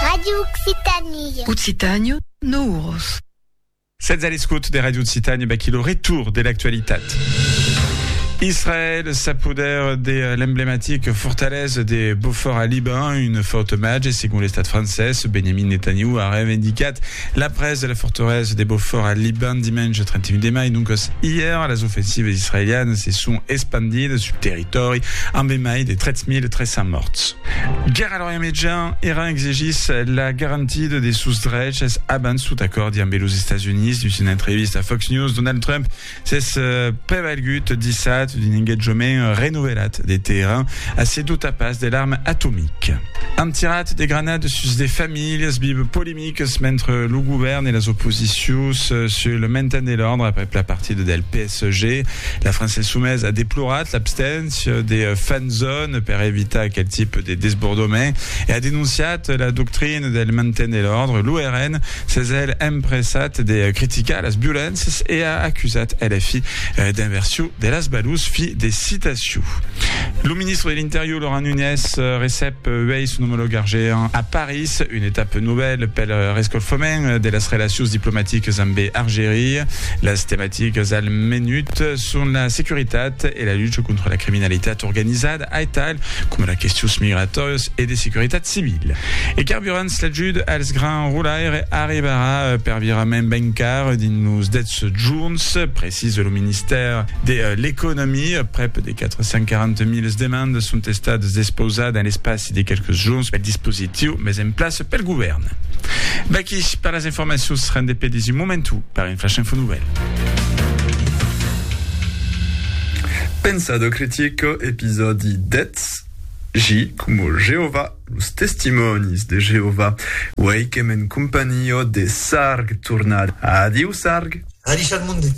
Radio Occitanie. Occitània, no uros. Sètz a l'escot de Radio Occitània, baquí lo retour de l'actualitat. Israel s'a poder de l'emblematic fortalesa de Beaufort a Liban, un fort omatge segon l'estat francés. Benjamin Netanyahu a reivindicat la presa de la fortalesa de Beaufort a Liban dimenge 31 de mai, doncas ièr las ofensivas israelianas se son espandidas sul territori. Tòri, amb e mai de 3.300 mòrts. Gèrra lorian mejan, Iran exigís la garantida de sos dreches abans tot acòrdi ambe los Estats Units. Dins una entrevista a Fox News, Donald Trump s'es prevalgut dissat d'un engatjament renovelat de Teheran a se dotar pas de l'arma atomica. An tirat de granades sus de familhas vive polimica. polemiques mentre lo govèrn e las oposicions sul le mainten de l'òrdre aprèp la partida del PSG. La França Insoumaise a deplorat l'absténcia de fanzone per evitar aquel tipe de desbordament e a denonciat la doctrina del mainten de l'òrdre. Lo RN s'es hèl empressat de criticar las violéncias e a acusat LFI d'inversion de las balors. Fi de citacion. Lo ministre de l'Interior Laurent Nunez recep uèi son omològ argéen a Paris. Es una etapa novèla pel rescalfament de las relacions diplomaticas ambe Argeria. Las tematicas al menut son la securitat e la lucha contra la criminalitat organizada, aital coma las questions migratòrias e de securitat civila. E carburants, l'ajut als grans rolaires arribarà per virament ben car dins los 10 jorns, precisa lo ministèr de l'Economia. 440 miles demandes son estadas despausats dins l'espaci de quelques jorns pel dispositiu mes en plaça pel govèrn. Vaqui per las informacions rendepedis un momentu per un flash info nouvelle. Pensado critico, episòdi 10. J como Jehová, los testimònis de Jehová. Uèi qu'èm en companhió de Sarg tornada. Adiu, Sarg! Adichar monde!